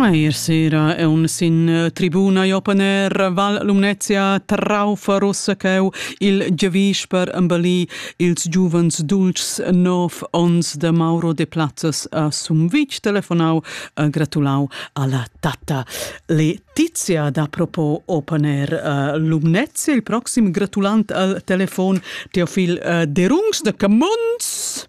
Eir sera è un sin eh, tribuna Jopaner Val Lumnezia Traufaruss ch'eu il giavisch per embellir ils giuvens dulcs nov ons de Mauro de Plazzas a Sumvitg telefonau e gratulau alla tatta Letizia da propos Opaner eh, Lumnezia il proxim gratulant al telefon Teofil eh, Derungs de Camons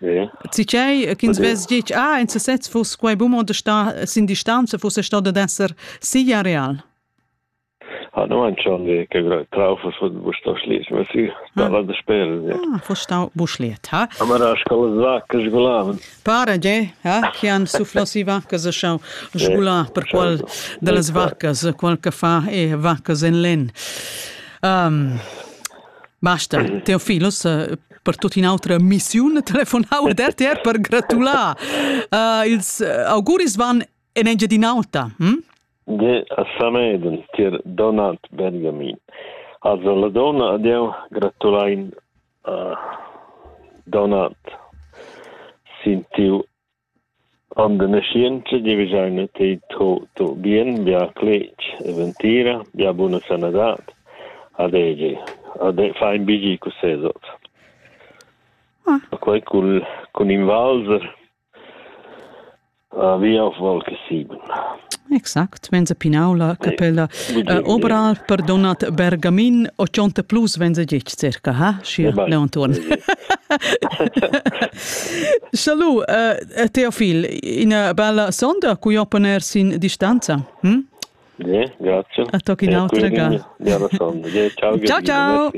Tgei ch'ins vess ditg, ah, en sesez fuss quei buc mo star sin distanza, fuss stau dad esser si areal. Ha no ein schon die Traufe von Buschtaschlies, ma sie stava da spielen. Ah, fuss stau Buschliet, ha? Aber a scola svacca sgulavan. Pare, ge, ha? Chi han sufflossi vaccas e schau sgular per qual de las vaccas, qual che fa e vaccas en len. Um, Basta, teo filos eh, per tut in autra missiun telefonau ad RTR per gratular. Uh, ils eh, auguris van en Engiadin'Alta. Hm? De a Sameden, tier Donald Benjamin. Also la donna adieu, gratulain uh, Donald sin tiu Under naschientscha giavisch'eina ti tuot tuot bien, bia cletg e ventira, bia buna sanadad. Adegi. Ade fai ün bigl cun ses ot. Ah. Quai cun, cun ün valzer. A via of val che siben. Exact. Tmenza Pinaula, capella uh, Obral, perdonat Bergamin, 80 plus venza gic circa, ha? Schi, Leonturn. Salu, uh, Teofil, ina bella sonda, cui opponer sin distanza? Hm? Bien, grazie. A toc in autra ga. Ja, ciao, ciao.